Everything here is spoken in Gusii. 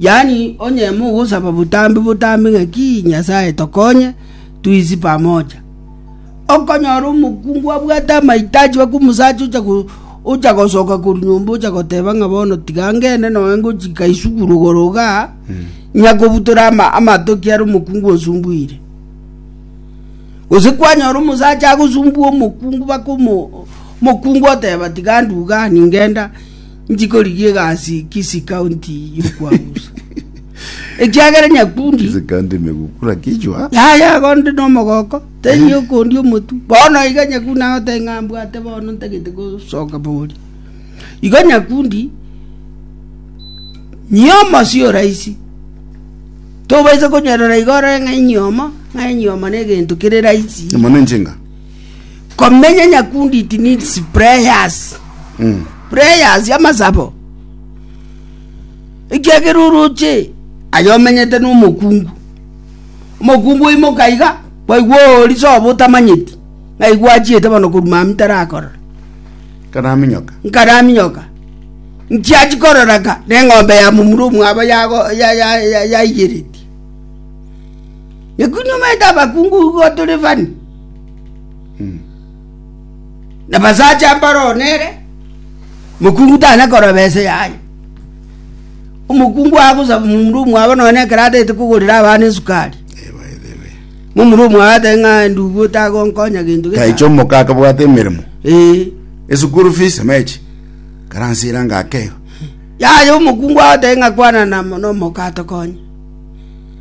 Yaani, onye mogosaba botambe botambe ng'aki, Nyasae tokonye, tuisie pamoja. Okonyora omokungu abwate amaito achiba kw'omosacha ocha gosoka korwa nyomba ocha goteba ng'a bono tiga ngende noe ngochika isukuru igoro iga, nyakobutora amatoki are omokungu osumbuire. Gose kwanyora omosacha agosumbua omokungu baka omokungu oteba tiga nduga ningenda. Nchikorigia egasi Kisii County y'okwamusa. Ekiagera nyakundi. Kisi kandi megukura kichwa. Yaya gonde no mogoko. Tenyi yokundi omotu. Bono iga nyakundi nagote ng'ambwate bono ntagete gosoka bori. Igo nyakundi nyomo si oraisi. Tobaisa konyorora igora ng'a inyomo, ng'a inyomo ne gento kere raisi. Mono enchenga. Komenya nyakundi it needs prayers. Mm. Prayers y'amasabo. Ekiagera oroche ayo omenyete n'omokungu. Omokungu oimoka iga kwaigwa ori sobo otamanyeti. Ngaigwa achiete bono koruma amitarakora. Karaminyoka. Nkaraminyoka. Nchiachi kororaka n'eng'ombe ya mumura omwabo yago ya ya ya yaigereti. Nyakundi omaete abakungu igo tore fani. nabasacha mbaroo nere mokungu tana koroba ese yaye omokungu agosaba omomura omwabo nonye na ekero atagete kogorera abana esukari Eh, by the way. momura omwabo atebe ng'a ndugu otagonkonya gento gesa." taicho omoka akabwate emeremo Eh. esukuru fees emechi karansira ngakeo yaya omokungu agoteba ng'a kwana na- nomoka atokonye